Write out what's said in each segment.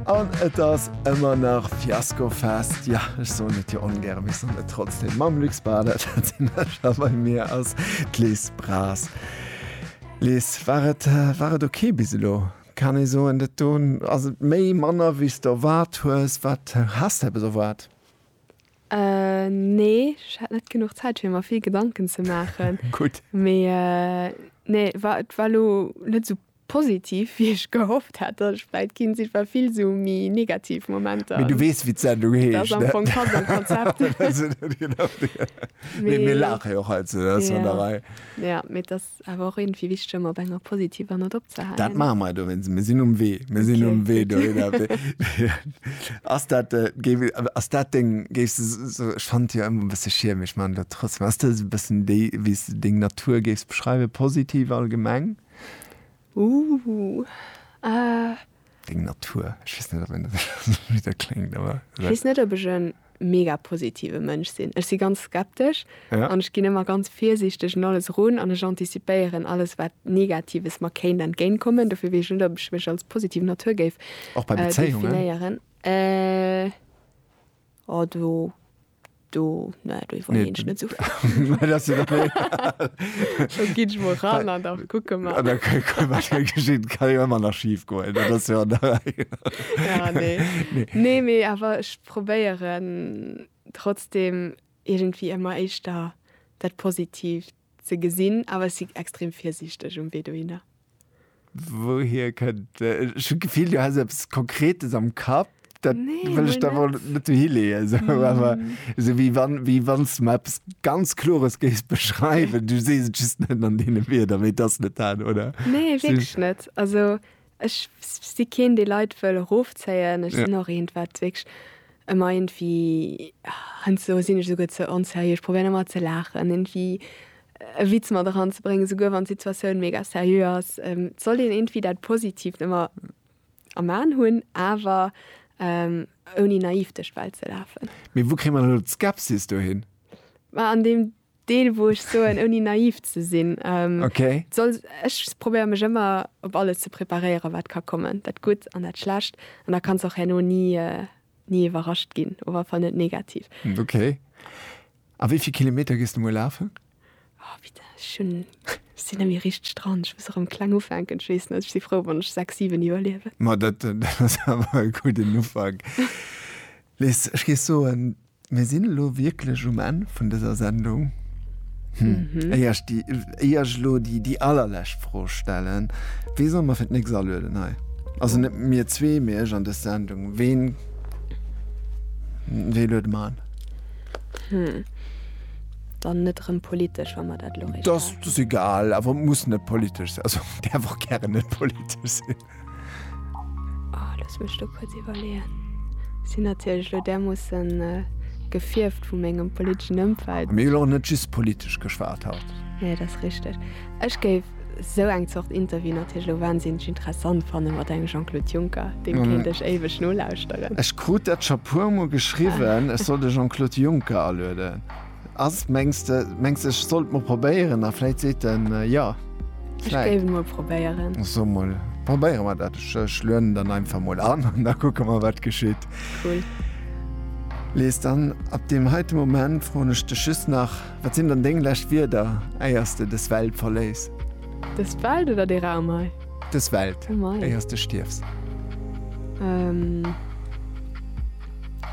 An et ass ëmmer nach Fiaskofest, jo, ech soen et jo ongäre mee ech soen et trotzdem, mam Luc Spada, dat sinn ech, a bei mir ass d'Liz Braz. Liz, war et, war et ok bis elo? Kann ee soen, dat do ass et méi, manner wéi s de erwaart hues? Wat has de eppes erwaart? Nee, ech hat net genuch Zäit fir mer vill Gedanken ze maachen. Gutt. Mee nee, war, et war elo net esou Positiv wéi ech gehofft hat dass ech vläit ginn sinn, war vill sou méi negativ Momenter. Mee du weess wéi d'Sendung heescht. Dat ass am Fong pass am Konzept. Mee mir laache jo och hei ze der Sonderei. Jo, mee et ass awer och iergendwéi wichteg ëmmer op enger positiver Note opzehalen. Dat maache mer dowéinst, mir sinn um Wee, mir sinn um Wee dohinner. Ass dat, ass dat deng, géifs de sou, ech fannen et jo ëmmer e bësse schierm mee ech maachen et elo trotzdem, ass dat esou e bëssen déi wéi s de deng Natur géifs beschreiwen, positiv allgemeng? Ooh, ah. Deng Natur. Ech weess net, ob een dat esou bitter kléngt, awer. Ech weess net, ob ech e mega positive Mënsch sinn. Ech si ganz skeptesch an ech ginn ëmmer ganz virsiichteg un alles erun an ech anticipéieren alles, wat Negatives mer kéint entgéint kommen. Dofir weess ech net, ob ech mech als positiv Natur géif definéieren. Och bei Bezéiungen? Oh, do, do, ne, do iwwerleen nee, ech net so Scho gi mo ran an da kucke mer. Ah, da geschitt kann jo ëmmer nach schief goen. Dat ass jo an der Rei. Ja, nee. Nee. Nee, mee awer ech probéieren trotzdem iergendwéi ëmmer éischter dat Positivt Ze gesinn, awer ech si extrem virsiichteg um Wee dohinner. Wouhier kënnt, ech hu d'Gefill du häss eppes Konkretes am Kapp, dat wëll ech der wor net dohi leeën, esou awer esou wéi wann wéi wann s de mer eppes ganz Klores géifs beschreiwen, du sees et just net an deene Wierder, mee et ass net dat, oder? Nee, wierklech net. Also Ech si keen dee Leit wëll erofzéien, ech sinn och eent wat wierklech ëmmer iergendwéi, heiansdo sinn ech esouguer ze onserieux, ech probéieren ëmmer ze laachen, iergendwéi e Witz mat eran ze bréngen, esouguer wann d'Situatioun mega seriö ass. Et sollt een iergendwéi dat Positiivt ëmmer am Aen hunn, awer ouni naiv duerch d'Welt ze lafen. Mee wou kréie mer elo d'Skepsis dohin? An deem Deel wou ech soen ouni naiv ze sinn. Okay. Soll, ech probéiere mech ëmmer op alles ze preparéieren wat ka kommen, dat Gutt an dat Schlecht, an da kanns och herno ni ni iwwerrascht ginn, op alle Fall net negativ. Okay. A wéi vill Kilometer gees de muer lafen? Oh bitte, ech hunn, ech sinn nëmme richteg dran, ech muss erëm kleng ufänken. Ech weess net, ech si frou wann ech 6, 7 iwwerliewen. Ma dat, dat ass awer e gudden Ufank. Liz, ech géif soen, Mir sinn elo wierklech um Enn vun dëser Sendung. Éier ech déi, éier ech elo déi, déi allerlescht Fro stellen, Wee soll mer fir d'nächst alueden hei? Also net mir zwee, mee ech an dës Sendung. Ween, wee luede mer an? Dann net erëm politesch, wa mer dat elo richteg. Dass, dass egal, awer muss net politesch sinn. Also däerf och gären net politesch sinn. Oh, lass mech do kurz iwwerleeën. Si natierlech lo därmoossen äh, gefierft vu mengem politeschen Ëmfeld. Mir hu jo och net just politesch geschwat haut. Nee, dat ass richteg. Ech géif esou eng Zort Interview natierlech lo wahnsinneg interessant fannen, mat engem Jean-Claude Juncker. Deem kéint ech éiweg nolauschteren. Ech krut dat scho puermol geschriwwen, ech soll de Jean-Claude Juncker alueden. Ass mengs de mengs de ech sollt mol probéieren a vläit seet den jo. Ech géif mol probéieren. So mol probéiere mer dat. Ech ech lueden dann einfach mol an an da kucke mer wat geschitt. Cool. Lies, dann ab deem heite Moment froen ech dech just nach, wat sinn dann deng lescht Wierder éier s de des Welt verléiss? Des Welt oder dee Raum hei? Des Welt, éier s de stierfs. Ehm.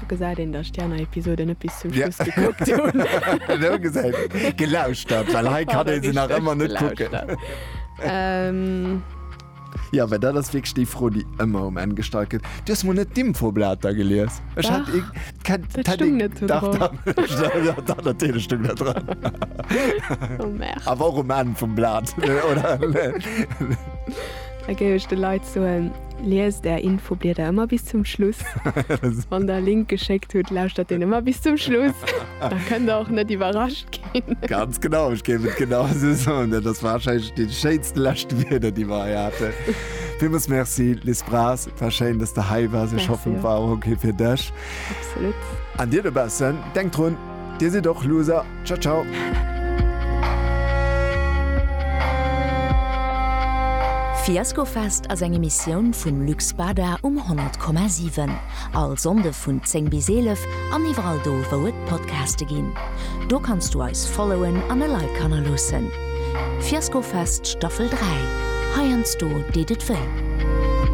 Do gesäit een, datt ech déi aner Episoden net bis zum Schluss gekuckt hunn. Do gesäit een, gelauschtert, well hei kann ee se nach ëmmer net kucken. Jo, well dat ass wierklech déi Fro, déi ëmmer um Enn gestallt gëtt. Du hues mol net d'Infoblater gelies? Ech hat ee. Dach, dat stoung net do dran. Dach, dach, dach, natierlech stoung dat dran. Oh merde. Awer och um Enn vum Blat, oder? Da géif ech de Leit soen. Liest är Infoblieder ëmmer bis zum Schluss. Wann der e Link geschéckt hutt, lauschtert deen ëmmer bis zum Schluss. Da kënnt der och net iwwerrascht ginn. Ganz genau, ech géif et genau esou soen. Dat ass wahrscheinlech déi schéinsten lescht Wierder, déi mer hei haten. Villmools Merci, Liz Braas. Et war schéin, dass de hei waars. Ech hoffen, et war och ok fir dech. Absolut. An dir dobaussen, denkt drun! Dir sidd och Loser. Ciao ciao. Fiaskofest ass eng Emissioun vum Lux Bada um 10,7. All Sonnde vun 10 bis 11 an iwwerall do, wou et Podcaste ginn. Do kanns du eis followen an e Like hannerloossen. Fiaskofest Staffel 3, Heiansdo deet et wéi.